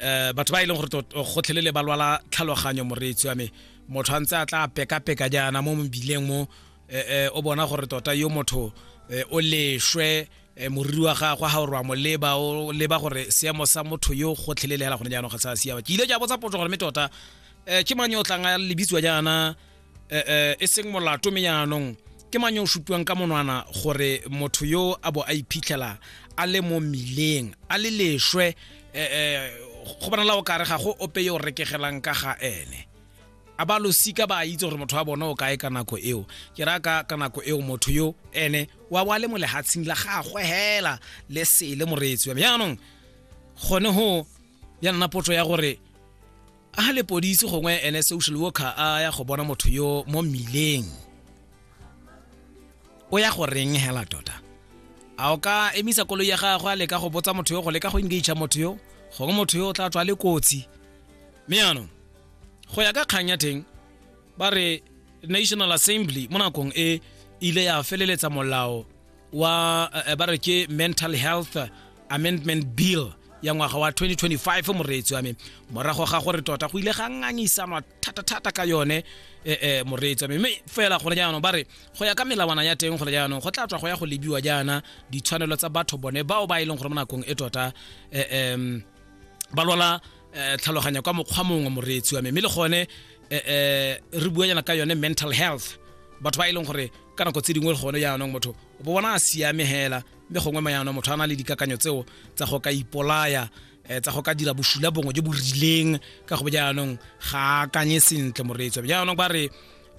eh batho ba e leng gore gotlhelele ba lwala tlhaloganyo moreetsi wa me motho a ntse a tla peka-peka jaana mo mobileng mo eh, eh, o bona gore tota yo motho eh, o leshwe moriri wa gagwe ga o rwa moleba o leba gore seemo sa motho yo gotlhelele fela gone jaanong ga sa siama ke ile ke a botsa potso gore mme tota um ke mang yo o tlang a lebitsiwa jaana eh, eh, e seng molato me yaanong ke mang yo o supiwang ka monwana gore motho yo a bo a iphitlhela a le mo mmileng a le leswe eh, go bona la o kare ga go ope yo o rekegelang ka ga ene a ba losika ba itse gore motho wa bona o kae ka nako eo ke ra ka ka nako eo motho yo ene wa bo a le mo lehatsheng la gagwe hela le sele moreetsi wa me yaanong gone go ya nna potso ya gore a lepodisi gongwe ene social worker a ya go bona motho yo mo mmileng o ya go reng hela tota a o ka emisa koloi ya gagwe a leka go botsa motho yo go leka go engage motho yo gongwe motho yo o tla tswa le kotsi mme yanong go ya ka kgang ya teng ba re national assembly mo nakong e ile ya feleletsa molao wa eh, ba re ke mental health amendment bill ya ngwaga wa 2025 moreetsi wa me morago ga gore tota go ile ga ngangisanwa thata-thata ka yone eh, eh, moreetsi wa me mme fela gone jaanong ba re go ya ka melawana ya teng gone jaanong go tla tswa go ya go lebiwa jaana ditshwanelo tsa batho bone bao ba e leng gore mo nakong e tota eh, em, ba lwala eh, tlhaloganya kwa mokgwa mongwe moreetsi wa me mme le gone eh, eh, re bua jana ka yone mental health batho ba e leng gore ka nako tse dingwe gone jaanong motho o bo bona a siame hela mme gongwe mayanong motho a na le dikakanyo tseo tsa go ka ipolaya um tsa go ka dira bosula bongwe jo bo rileng ka go bo jaanong ga akanye sentle moreetso jaanong ba re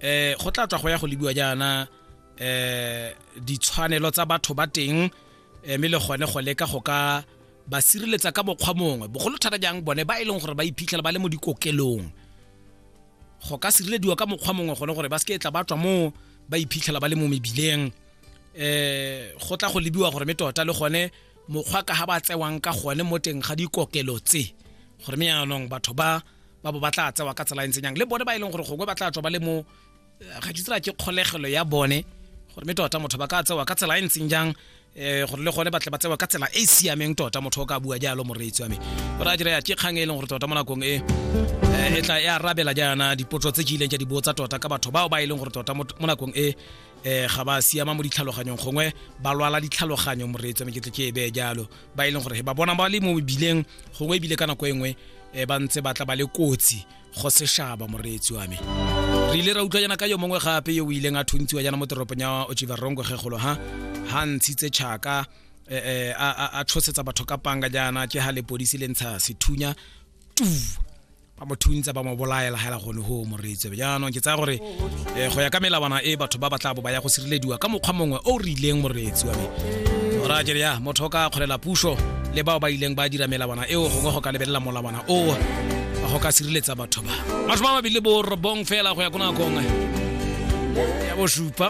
um go tla tswa go ya go lebiwa jaana um ditshwanelo tsa batho ba teng Eh, mme le gone go leka go ka ba sireletsa ka mokgwa mongwe bogolo thata jang bone ba e leng gore ba iphitlhela ba le mo dikokelong go ka sirelediwa ka mokgwa mongwe gone gore ba seke tla ba tswa moo ba iphitlhela ba le mo mebileng um go tla go lebiwa gore me tota le gone mokgwa ka ga ba tsewang ka gone mo teng ga dikokelo tse gore me yaanong batho ba ba bo ba tla tsewa ka tsela e ntseng yang le bone ba e leng gore gongwe ba tla tswa ba le mo ga ke tsela ke kgolegelo ya bone gore mme tota motho ba ka tsewa ka tsela e ntseng jang um gore le gone batle ba tsewa ka tsela e e siameng tota motho o ka bua jalo moreetsi wa me gore a jira ya ke kgang e leng gore tota mo nakong e eh, e tla e arabela jaana dipotso tse ke ileng ke di botsa tota ka batho bao ba e leng gore tota mo nakong e um ga ba siama mo ditlhaloganyong gongwe ba lwala ditlhaloganyo moreetsi wa me ke tle ke e bee jalo ba e leng gore ba bona ba le mo mebileng gongwe ebile ka nako e nngwe um ba ntse ba tla ba le kotsi go seshaba moreetsi wa me re ile ra utlwa jana ka yo mongwe gape yo o ileng a thuntsiwa jana mo toropong ya ochivarongo kgegolo ha ha ntshitse chaka eh, eh, a tshosetsa batho ka panga jana ke ha lepodisi le ntsha sethunya tu ba mo thuntsa ba mo bolaela hela gone ho moreetsi jaanong ke tsaya gore eh, go ya ka melawana e batho ba ba tla bo ba ya go sirelediwa ka mokgwa mongwe o re ileng moreetsi wa me ora ke ya motho o ka kgolela puso le bao ba ileng ba dira melawana eo gongwe go ka lebelela molawana oo go ka sireletsa batho ba masome a mabedi le borobong fela go ya ko nakong ya bosupa